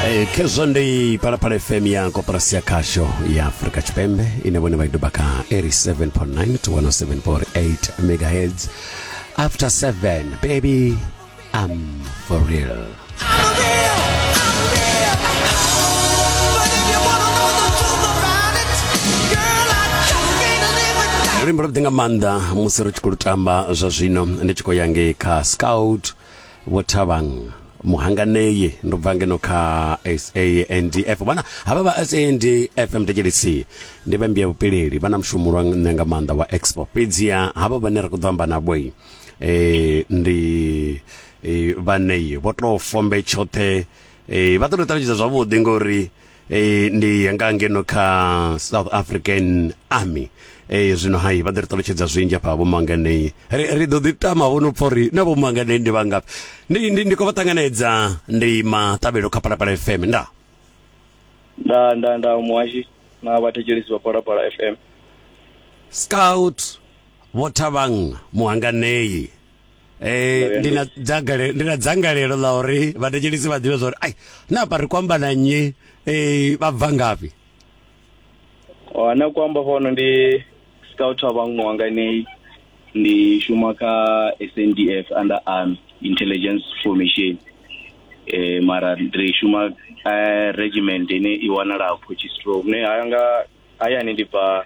Eh, khezwo ndi phalaphala fm ya koporasi ya khasho ya afurika tshipembe ine vhone vha i doba kha 87.9 to 107.8 megahertz after 7 baby i'm for real luimbo lwavhuḓi nga maanḓa musi ri tshi khou lu tamba zwa zwino ndi tshi khou ya ngei kha scout vho thabang muhanganei ndo bva ngeno kha SANDF vhana havha vha SANDF MDLC ndi vha mbiya vhupileli vha na mushumo lwa nṋe nga maanḓa wa expo fhedzi ya havha vhane ra khou ḓo amba na boi eh ndi eh, vhanei vho tou fombe tshoṱhe eh, vha ṱoḓo ṱalutshedza zwavhuḓi ngori e, ndi yanga ngeno kha south african army e, zwino hai vha ḓo ri ṱalutshedza zwinzhi afha vhomanganei ri, ri ḓo ḓi tama vho no pfa uri na vhomanganei ndi vhangafhi ndi, ndi, ndi khou vha ṱanganedza ndi maṱavhelo kha palapala fm nda nda nda nda muhashi na vhathetshelisi vha palapala fm scout vho thavhang muhanganei Eh ndi na dzangalelo ndi na dzangalelo ḽa uri vhathetshelisi vha ḓivhe zwa uri ai na pa ri kwamba na nnyi eh vha bva ngafhi Oh na kwamba fano ndi scout wa vhaṅwe wanga ni ndi shuma kha SNDF under army intelligence formation eh mara ndi shuma eh, regiment ine i wanala Potchefstroom ne haya nga hayani ndi bva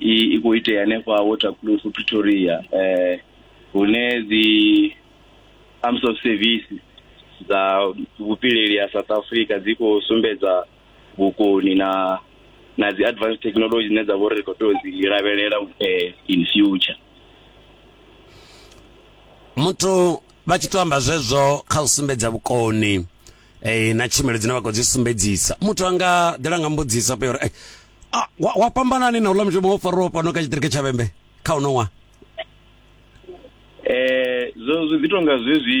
i khou itea hanefha waterclose pretoria um hune dzi arms of service dza vhupileli ha south africa dzi khou sumbedza vhukoni na na dzi advanced technology dzine dza vha uri ri khou tea u dzi lavhelela um in future muthu vha tshi to amba zwezwo kha u sumbedza vhukoni eh na tshumelo dzine vha khou dzi sumbedzisa muthu anga ḓela nga mbudzisa pa uri eh, ah, wa, wa fhambanani na uḽa mushumo wo fariwa fhano kha tshitiriki tsha vhembe kha uno ṅwaha eh zwo zwi ḓi tonga zwezwi